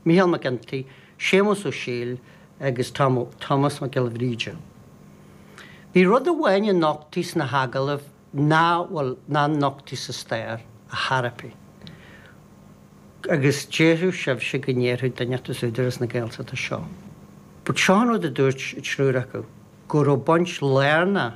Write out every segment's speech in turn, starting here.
Micheál McGinty, Séamus Ó Siadhail agus Tomás Mac Giolla Bhríde. Bhí rud amháin a nochtaíodh sna hagallaimh ná, bhuel, nár nochtaíodh sa stair, a tharlaigh. Agus déarfaidh sibhse go ndéarfadh duine inteacht as Údarás na Gaeltachta seo. But seo an rud a dúirt an triúr acu, go raibh baint lárnach,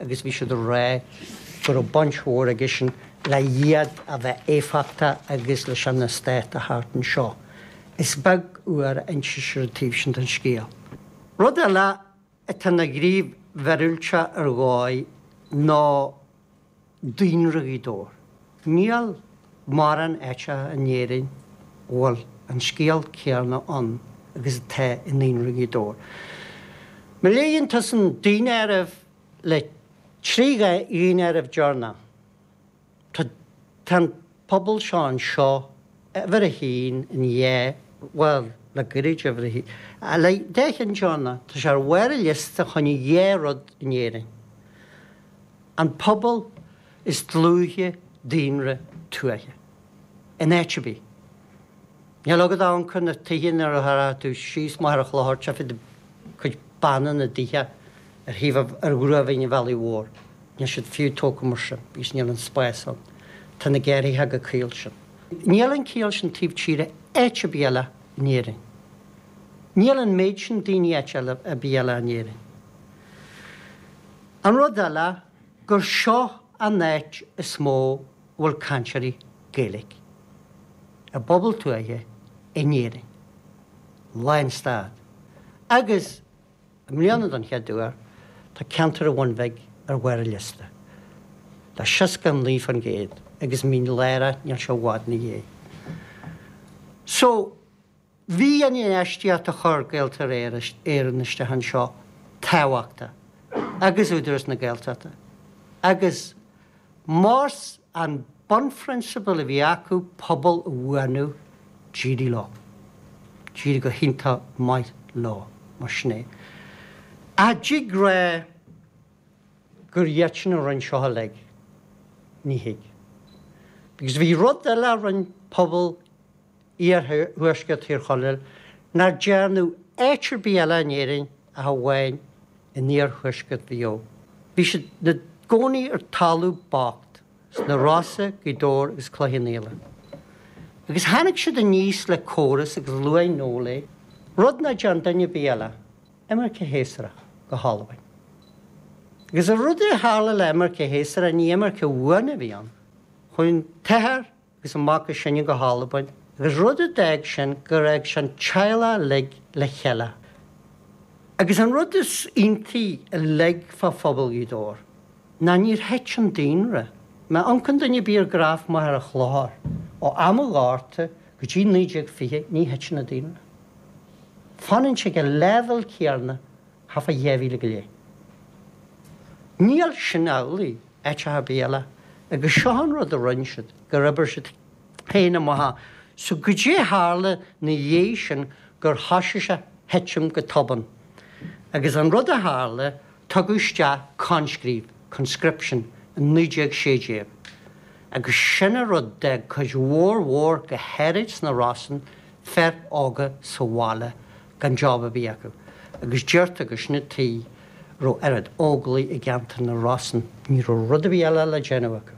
agus bhí siad ag rá go raibh baint mhór aigesean le iad a bheith éifeachtach agus leis an eastát a thabhairt anseo. Is beag uair a instear an taobh sin den scéal. Rud eile atá ina ghníomh mhíorúilteach ar dhóigh ná daonra Ghaoth Dobhair. Níl mórán áiteacha in Éirinn a bhfuil an scéal céanna ann agus atá i ndaonra Ghaoth Dobhair. Má léann tusa an daonáireamh le trí dhaonáireamh deireanacha, tá an pobal seo anseo uimhir a haon in dhá, bhuel, le gairid uimhir a haon, a le deich mbliana deireanacha, tá sé ar bharr an liosta fá choinne dhá rud in Éirinn. An pobal is dlúithe daonra tuaithe. In áit ar bith. Níl agat ach amharc ar na tithe nuair a rachaidh tú síos Machaire Chlochair, tá cuid de chuid beanna na dtithe ar thaobh ar ghruaimhín an bhealaigh mhóir. Níl siad fiú tógtha mar sin because níl an spás ann. Tá na gearrthacha go caol sin. Níl an cineál sin taobh tíre áit ar bith eile in Éirinn. Níl an méid sin daoine áit ar bith eile in Éirinn. An rud eile. gur seo an áit is mó a bhfuil cainteoirí Gaeilge i bpobal tuaithe in Éirinn, lánstad, agus i mbliana, don chéad uair, tá ceantar an Bhun Bhig ar bharr an liosta, le 69%, agus Mín Lárach, níl sé i bhfad ina dhiaidh. So. Bhí an infheistíocht a chuir Gaeltarra Éireann isteach anseo tábhachtach, agus Údarás na Gaeltachta, agus más an bunphrionsabal a bhí acu pobal a bhuanú, d'éirigh leo, d'éirigh go hiontach maith leo, más é. Ach an dtig a rá gur iad féin a rinne seo uilig, ní thig. Because bhí rud eile a rinne pobal iarthuaisceart Thír Chonaill nár dearnadh áit ar bith eile in Éirinn ach amháin in iarthuaisceart Mhaigh Eo. Bhí siad 'na gcónaí ar talamh bocht, sna Rosa, Gaoth Dobhair agus Cloich Cheann Fhaola. Agus tháinig siad aníos le córas agus luaigh Noel é, rud ná dearn duine ar bith eile, imirce shéasúrach go hAlbain. Agus an rud a tharla le imirce shéasúrach, ní imirce bhuan a bhí ann. Chuaigh an t-athair agus amach as sin go hAlbain, agus rud a d'fhág sin go raibh an teaghlach uilig le chéile. Agus an rud is iontaí uilig fá phobal Ghaoth Dobhair ná níor thit an daonra, má amharcann duine ar bith ar graf maith ar an chlár, ó am an Ghorta go dtí 1920, ní thiteann an daonra. Fanann sé ag an leibhéal céarna. Thart fá dhá mhíle go leith. Níl sin amhlaidh áit ar bith eile, agus seo an rud a rinne siad, gur oibir siad féin amach so goidé tharla 'na dhiaidh sin gur thoisigh sé a thitim go tobann. Agus an rud a tharla, tugadh isteach coinscríobh, conscription, i 1916, agus sin an rud a d'fhág cuid mhór mhór go háirid sna Rosann, fir óga sa bhaile, gan job ar bith acu, agus deirtear gur sin an tuige a raibh oiread óglaigh i gceantar na Rosann, ní raibh rud ar bith eile le déanamh acu.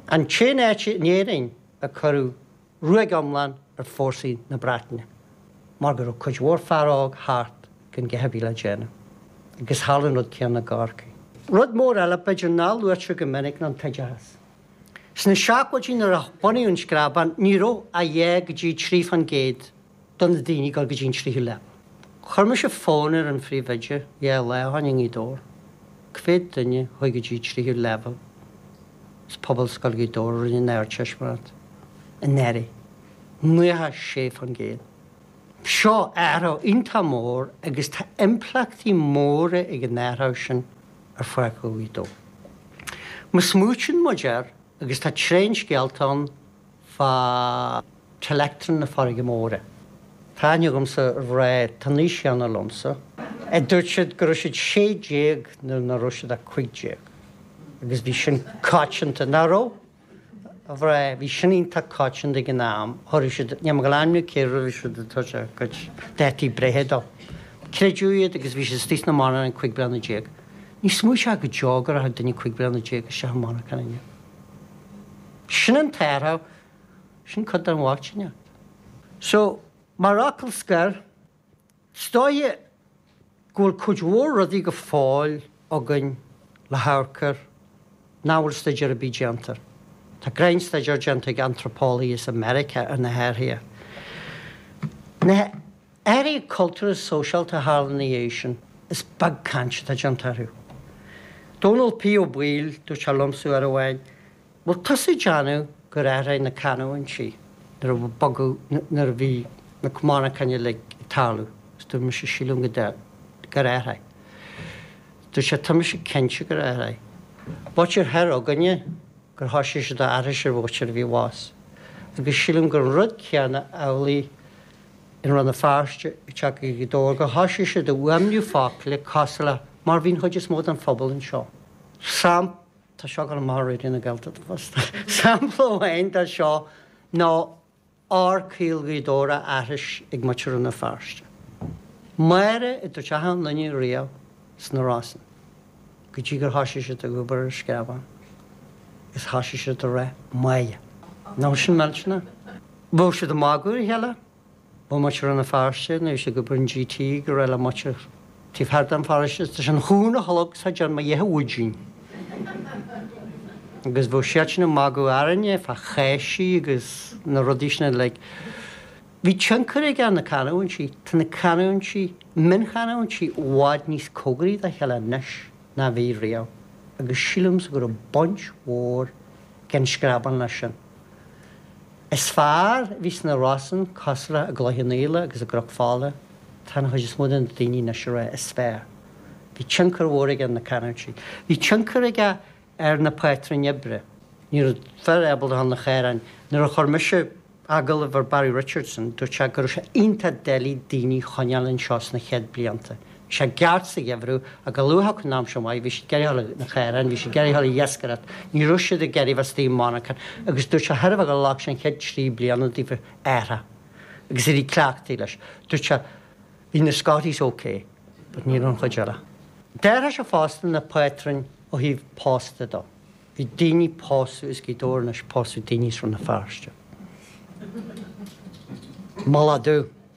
An t-aon áit in Éirinn a cuireadh ruaig iomlán ar fórsaí na Breataine, mar go raibh cuid mhór fear óg thart gan a dhath ar bith le déanamh, agus tharla an rud céanna i gCorcaigh. Rud mór eile, b'fhéidir, nach luaitear go minic ná an t-oideachas. Sna seachtóidí nuair a bunaíodh an Screabán ní raibh ach dhá go dtí trí fán gcéad de na daoine ag dul go dtí an tríú leibhéal. Chuir mise fón ar an phríomhoide dhá lá ó shin i nGaoth Dobhair, cá mhéad duine a chuaigh go dtí tríú leibhéal as Pobalscoil Ghaoth Dobhair a rinne an Ardteistiméireacht anuraidh, naocha sé fán gcéad. Seo athrach iontach mór agus tá impleachtaí móra ag an athrach sin. ar achan dóigh. Má smaoitíonn muid air, agus tá tréan scéalta ann fá Telectron na Farraige Móire, tá aithne agamsa ar dhream atá an aois chéanna liomsa, a dúirt siad go raibh siad sé déag nuair nach raibh siad ach cúig déag, agus bhí sin coitianta, nach raibh? a bhraith, bhí sin iontach coitianta ag an am, thabharfadh siad, níl mé ag ainmniú cé a thabharfadh siad an toise a gcuid dátaí breithe dó. Creideadh iad agus bhí siad istigh sna monarcháin cúig bliana déag. Ní smaoiteofá go deo go rachadh duine cúig bliana déag isteach i monarchan inniu. Sin an t-athrach, sin cuid den bhochtaineacht. So, mar fhocal scoir, Is dóigh go bhfuil cuid mhór rudaí go fóill againn le hamharc air nach bhfuil staidéar ar bith déanta air. Tá grinn-staidéar déanta ag antraipeolaithe as America ar na hathruithe. Na hathruithe cultúrtha is sóisialta a tharla ina dhiaidh sin, is beag caint atá déanta orthu. Dónall P. Ó Baoill, dúirt sé liomsa uair amháin, Bhuel, tá tusa ag déanamh gur athraigh na canúintí nuair a bogadh, nuair a bhí na cománaicáin uilig ag tarlú, is dúirt mise, sílim go deimhin, gur athraigh. Dúirt sé, tá mise cinnte gur athraigh. B'áitíor thoir againne gur thoisigh siad ag aithris ar mhuintir a bhí i bhfás. Agus sílim gur an rud céanna amhlaidh in Rann na Feirste, i dTeach Ghaoth Dobhair, gur thoisigh siad ag fuaimniú foclaí cosúil le mar bhí an chuid is mó den phobal anseo. Sam. Tá seo ag gabháil amach fríd an Ghaeltacht fosta. Sampla amháin de seo ná r caol Ghaoth Dobhair á aithris ag muintir Rann na Feirste. Máire a dúirt achan duine riamh sna Rosann, go dtí gur thoisigh siad ag obair ar Screabán, is thoisigh siad ag rá Máighe. Nó sin milse na. Bhí siad ag magadh ar a chéile bhí muintir Rann na Feirste anois ag obair in GT go raibh le muintir taobh thiar den pharóiste is leis an chuan a tholg siad an Mo Dhéithe Mhuigín agus bheadh siad sin ag magadh orainne fá cháisí agus na rudaí sin uilig. Bhí tionchar aige ar na canúintí, tá na canúintí, mionchanúintí i bhfad níos comhgaraí dá chéile anois ná a bhí riamh agus sílimse go raibh baint mhór ag an Screabán leis sin. is fearr a bhí sna Rosann cosraithe i gCloich Cheann Fhaola agus i gCnoc Fola, tá an chuid is mó de na daoine anois ag rá is fearr. Bhí tionchar mhór aige ar na canúintí. Bhí tionchar aige ar na pátrúin oibre. Ní raibh fear ábalta a ghabháil 'na chaoráin. Nuair a chuir mise agallamh ar Barry Richardson, dúirt sé go raibh sé iontach doiligh daoine a choinneáil anseo sna chéad blianta Bhí sé i gceart sa gheimhreadh, ach chomh luath is a thiocfadh an aimsir mhaith, bhí siad ag iarraidh a ghabháil 'na chaoráin, bhí siad ag iarraidh a ghabháil ag iascaireacht, ní raibh siad ag iarraidh bheith istigh i monarchan, agus dúirt sé b'fhéidir gur ghlac sé an chéad trí bliana daofa athrú, agus éirí cleachtaithe leis. Dúirt sé, bhí na Scotties OK, but ní raibh an chuid eile. D'athraigh sé fosta na pátrúin ó thaobh pósta de, bhí daoine ag pósadh as Gaoth Dobhair anois ag pósadh daoine as Rann na Feirste. Moladh.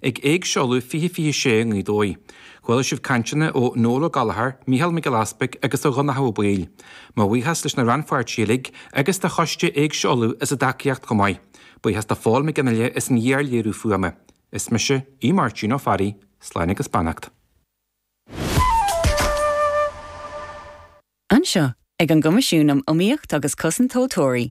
Ag Éigse Uladh 2026 i nGaoth Dobhair. Chuala sibh cainteanna ó Noel Ó Gallchóir, Mícheál Mac Giolla Easbuig agus ó Dhonnchadh Ó Baoill. Mo bhuíochas leis na rannpháirtithe uilig, agus do choiste Éigse Uladh as a dtacaíocht chomh maith. Buíochas do Phól Mac Fhionnghaile as an iarléiriú fuaime. Is mise Aodh Máirtín Ó Fearraigh. Slán agus beannacht. Anseo, ag an gCoimisiún um Iomaíocht agus Cosaint Tomhaltóirí,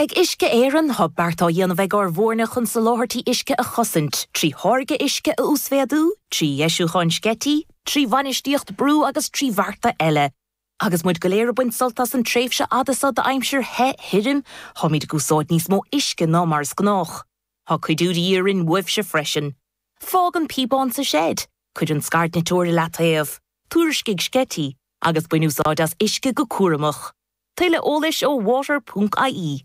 Ag Uisce Éireann, tá beart á dhéanamh ag ár bhfoirne chun soláthairtí uisce a chosaint, trí tháirgeadh uisce a uasmhéadú, trí dheisiúcháin sceití, trí bhainistíocht brú agus trí bhearta eile. Agus muid go léir ag baint sult as an tréimhse fhada seo d'aimsir the, thirim, táimid ag úsáid níos mó uisce ná mar is gnách. Tá cuidiú de dhíth orainn uaibhse freisin. Fág an píobán sa seid. Cuir an scairdniteoir i leataobh. Tuairiscigh sceití. Agus bain úsáid as uisce go cúramach. Tuilleadh eolais ó water ponc ie.